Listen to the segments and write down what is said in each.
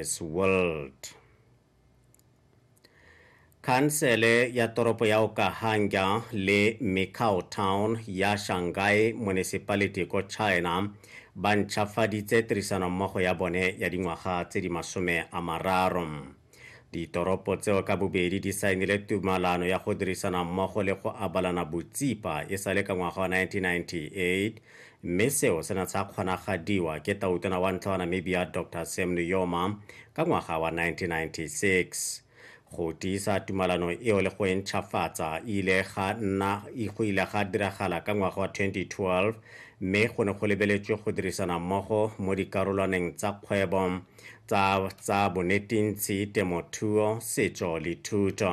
It's World. Khansele ya toropo ya Okahanga le Mikao Town ya Shanghai Municipality ko China ba ntšhafaditse tirisanommogo ya bone ya dingwaga tse di masome a mararo. Ditoropo tseo ka bobedi di saenile tumalano ya go dirisana mmogo le go abalana botsipa e sa le ka ngwaga wa 1998 mme seo se ne sa kgonagadiwa ke Tautona wa ntlha wa Namibia Doctor Sam Nujoma ka ngwaga wa 1996. Go tiisa tumalano eo le go e ntšhafatsa ile ga nna go ile ga diragala ka ngwaga wa 2012 mme go ne go lebeletswe go dirisana mmogo mo dikarolwaneng tsa kgwebo, tsa tsa bonetintsi, temothuo, setso le thuto.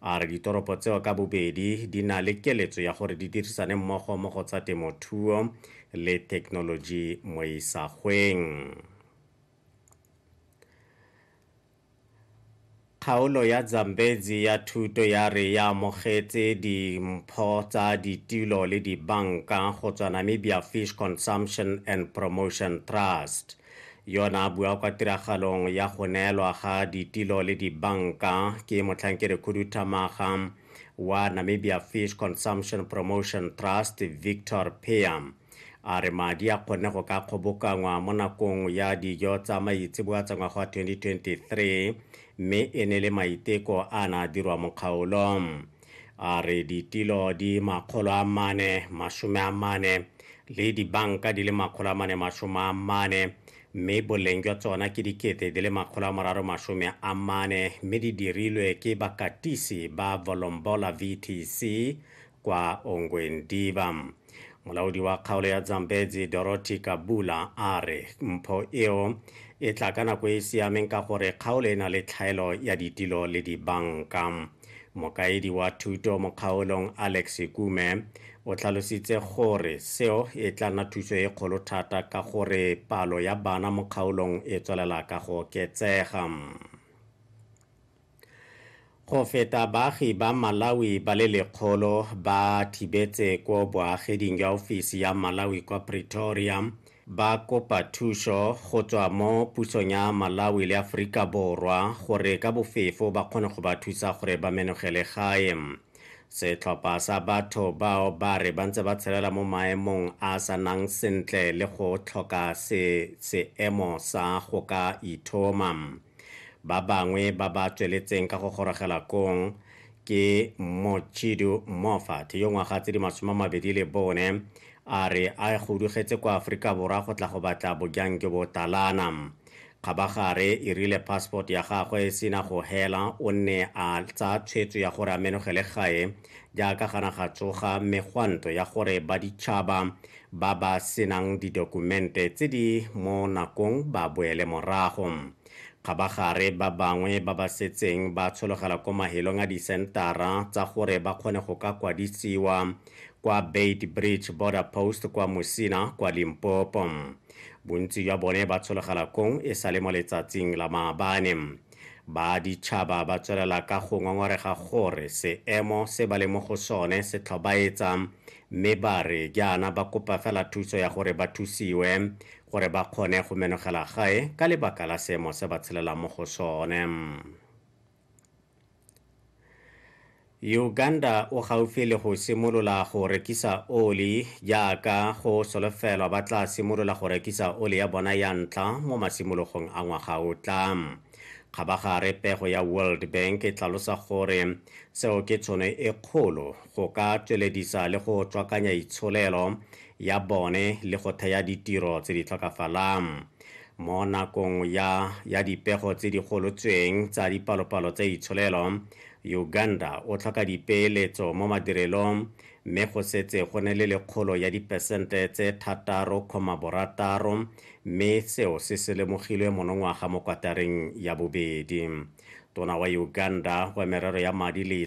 A re ditoropo tseo ka bobedi di na le keletso ya gore di dirisane mmogo mo go tsa temothuo le thekenoloji mo isagweng. Kgaolo ya Zambezi ya thuto ya re ya amogetse dimpho tsa ditulo le dibanka go tswa Namibia Fish Consumption and Promotion Trust. Yona a bua kwa tiragalong ya go neelwa ga ditilo le dibanka ke motlhankedi khuduthamaga wa Namibia Fish Consumption Promotion Trust Victor Pea a re madi a kgonne go ka kgobokangwa mo nakong ya dijo tsa maitseboa tsa ngwaga wa 2023 mme e ne le maiteko a na dirwa mo kgaolong a re ditilo di makgolo a mane masome a mane le dibanka di le makgolo a mane masome a mane mme boleng jwa tsona ke dikete di le makgolo a moraro masome a mane mme di dirilwe ke bakatisi ba volombola vtc kwa ongwendiva molaodi wa kgaolo ya zambezi dorothy kabula a re mpho eo e tla ka nako e e siameng ka gore kgaolo e na le tlhaelo ya ditilo le dibanka mokaedi wa thuto mo kgaolong alex kume o tlhalositse gore seo e tla nna thuso e kgolo thata ka gore palo ya bana mo kgaolong e tswelela ka go oketsega Go feta baagi ba Malawi ba le lekgolo ba thibetse ko boageding jwa ofisi ya Malawi kwa Pretoria ba kopa thuso go tswa mo pusong ya Malawi le Aforika Borwa gore ka bofefo ba kgone go ba thusa gore ba menogele gae. Setlhopha sa batho bao ba re ba ntse ba tshelela mo maemong a sa nang sentle le go tlhoka se seemo sa go ka ithoma. Ba bangwe ba ba tsweletseng ka go gorogela kong ke Mochidu Moffat yo ngwaga tse di masome a mabedi le bone a re a go dugetse kwa Aforika Borwa go tla go batla bojang jo bo talana. Kgabagare e rile passport ya gagwe e sena go hela o nne a tsaya tshwetso ya gore a menogele gae jaaka gana ga tsoga megwanto ya gore baditšhaba ba ba senang didokumente tse di mo nakong ba boele morago kgabagare ba bangwe ba ba setseng ba tshologela ko mahelong a disentara tsa gore ba kgone go ka kwadisiwa kwa bait bridge border post kwa mosina kwa limpopo bontsi jwa bone ba tshologela kong e sa le mo letsatsing la maabane Baditšhaba ba tswelela ka go ngongorega gore seemo se ba le mo go sone se tlhobaetsa mme ba re jaana ba kopa fela thuso ya gore ba thusiwe gore ba kgone go menogela gae ka lebaka la seemo se ba tshelelang mo go sone. Uganda o gaufi le go simolola go rekisa oli jaaka go solofelwa ba tla simolola go rekisa oli ya bona ya ntlha mo masimologong a ngwaga o tla. Kgabagare pego ya World Bank e tlalosa gore seo ke tshono e kgolo go ka tsweledisa le go tswakanya itsholelo ya bone le go thea ditiro tse di tlhokafalang. Mo nakong ya ya dipego tse di golotsweng tsa dipalopalo tsa itsholelo, Uganda o tlhoka dipeeletso mo madirelong mme go setse go ne le lekgolo ya dipesente tse thataro kgoma borataro mme seo se se lemogilwe monongwaga mo kwatareng ya bobedi. Tona wa Uganda wa merero ya madi le